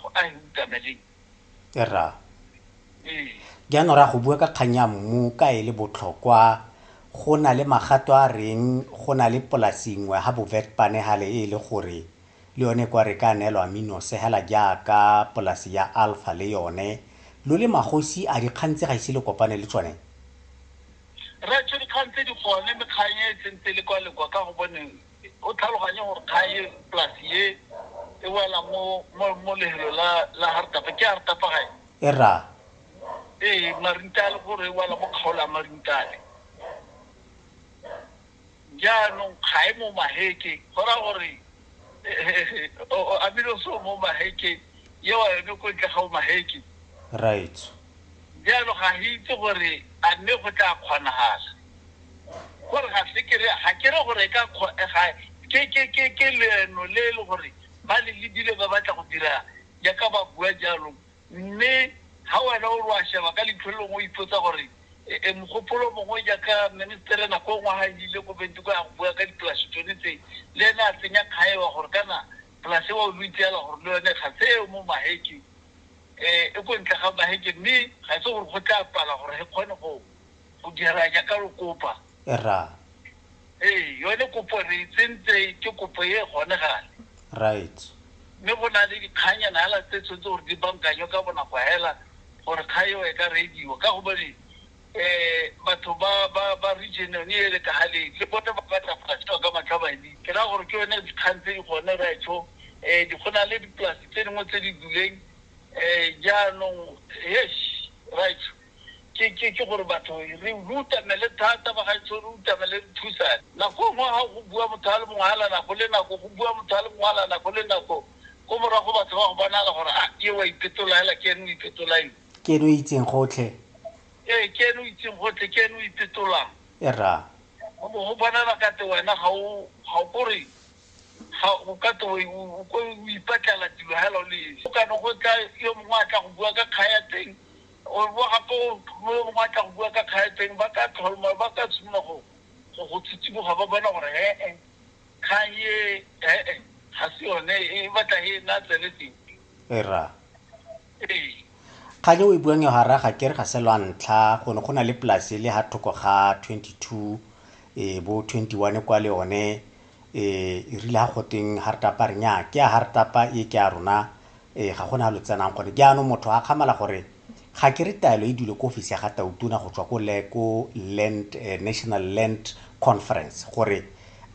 go a hukana le erra ee jaanong ra go bua ka kgang ya mmu ka e le botlhokwa go na le magato a reng go na le polasi nngwe ga bovetpane gale e le gore le yone kwa re ka neelwa minose hela jaaka polasi ya alpha le yone lo le magosi a dikgang tse ga ise le kopane le tsone re tshwe dikgang tse di gone mekgang e e sentse le kwa lekwa ka go bone o tlhaloganye gore kgang e polasi e e wela mo mo mo lehelo la la hartapa ke hartapa gae e ra ee marintale gore e wela mo kgaolo ya marintale jaanong ga e mo maheke go ra gore amile so mo maheke ye wa yone ko ntle ga o maheke right jaanong ga re itse gore a mme go tla kgonagala Gore ga se ke re, ga ke re gore e ka kgo, ga, ke, ke, ke, ke leeno le e le gore ba le lebile ba batla go dira jaaka ba bua jalo. Mme ga wena o re wa sheba ka leitlho le lengwe o ipotsa gore, e, e, mogopolo mongwe jaaka ministere nako e nngwe ga e ile ko Windhoek go ya go bua ka dipolase tsone tse, le ene a tsenya kgaewa gore kana polase eo lo itseela gore le yone ga se e mo Maheke, e, e ko ntle ga Maheke mme ga se gore go tla pala gore e kgone go, go dira jaaka re kopa ra ee yone kopo re e tsentse ke kopo e e kgonegang right mme go na le dikganyana hela tse tshwanetse gore di bankanywe ka bonako hela gore kga eo e ka rediwa ka gobane um batho ba region yone e le ka galeng le bone ba batla go ka matlha madi ke ra gore ke yone dikgang tse di gone retsho um eh, go na le dipolasi tse dingwe tse di duleng um jaanong yes retsho ke gore batho re utamele thata bagaetsho, re utamele re thusane. Nako e nngwe ga go bua motho a le mongwe a la nako le nako, go bua motho a le mongwe a la nako le nako, ko morago batho ba go bonala gore a ke wa ipetola hela ke ene o ipetolang. Ke ene o itseng gotlhe. Ee, ke ene o itseng gotlhe, ke ene o ipetolang. E ra. Go bo go bonala kate wena ga o ga o kore ga o kate o o ipatlela dilo hela o le esi. Go kane go tla yo mongwe a tla go bua ka kga ya teng Gore bo gape o phumole bo matla go bua ka kgaeteng, ba ka tlholma, ba ka simolola go, go, go tshitsiboga, ba bona gore he-e, kgang e, he-e, ga se yone e, e batla e nna tsele teng. Era. Ee. Kgang e o e buang eo, ga re a ga kere ga se lwa ntlha, go ne go na le polase e le ha thoko ga 22, e, bo 21 kwa le yone, e rile ha goteng ha re tapa re nya ke ya ha re tapa e ke ya rona e ga gona lo tsenang gone jaanong motho a kgamala gore ga ke re taelo e dule ko ofisi ya ga tautona go tswa ko le ko land eh, national land conference gore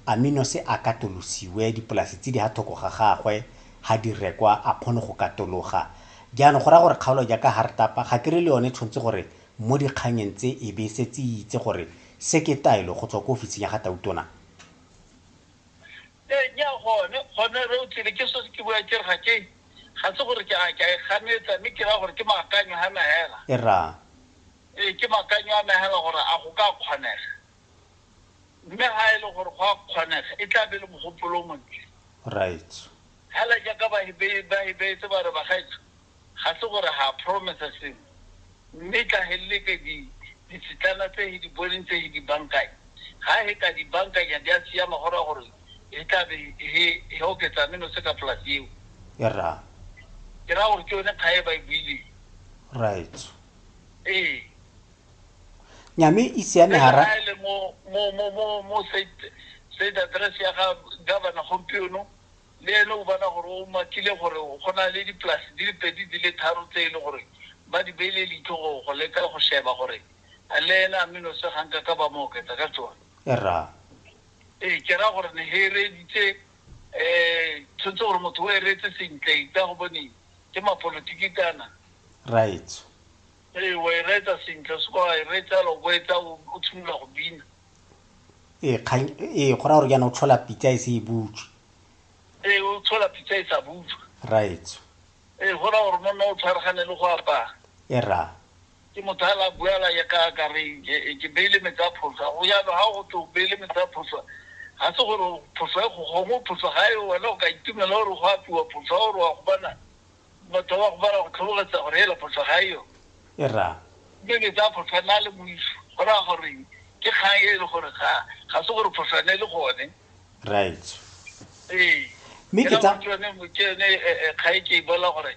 amino se a katolosiwe dipolasi tse di ha thoko ga gagwe ha di rekwa a kgone go katologa jaanong go raya gore kgaolo jaaka ha re tapa ga ke re le yone tshwanetse gore mo dikganyeng tse e be setse itse gore se ke taelo go tswa ko ofising ya ga tautona Ee, nya gone, gone re o tsile, ke sose ke bua ke re ga ke, ga se gore ke a, ke a e ganetsa, mme ke raya gore ke maakanyo a me hela. E ra. Ee, ke maakanyo a me hela gore a go ka kgonega. Mme ha e le gore go a kgonega, e tla be e le mogopolo o montle. Right. Hela jaaka ba, ba, ba e beetse ba re, Bagaetsho, ga se gore ha a promise-a sengwe, mme tla he leke di, ditshitlana tse he di boneng tse he di bankanya. Ha he ka di bankanya di a siama, go raya gore he tla be he, he oketsa menose ka polasi eo. E ra. Ke raya gore ke yone kga e ba e buileng. Right. Ee. Nyame e siame ha ra. Ele mo, mo, mo, mo, mo state, state address ya ga governor gompieno, le ene o bona gore o makile gore go na le dipolase di le pedi di le tharo tse e le gore ba di beile leitlho go go leka go sheba gore a le ene a menose ga nka ka ba mo oketsa ka tsone Erra. ee ke ra gore ne he reeditse um tshwanetse gore motho o e reetse sentle ka go bone ke mapolotiki kana Raetsho. Ee, wa e reetsa sentle, o se ka wa e reetsa fela o bo etsa o o tshimolola go bina. ee kgang ee go raya gore jaana o tlhola pitsa e se e butswe Ee, o tshola pitsa e sa butswa. raetso Ee, go raya gore monna o tshwaragane le go apara. e ra Ke motho a la bua la ya ka ka re ke- ke beile metsi a phoswa. Go jalo ha go twe o beile metsi a phoswa. Ga se gore phoswa e go gongwe phoswa ga e wena o ka itumela gore go apiwa phoswa gore wa go bona batho ba go bala go tlhobogetsa gore hela photlho ga e yone e ra mme ke tsaya photlho nna le moiso go raya gore ke kgang e e le gore ga ga se gore photlho ne e le gone right ee mme ke tsa yone ke yone kgang e ke e bola gore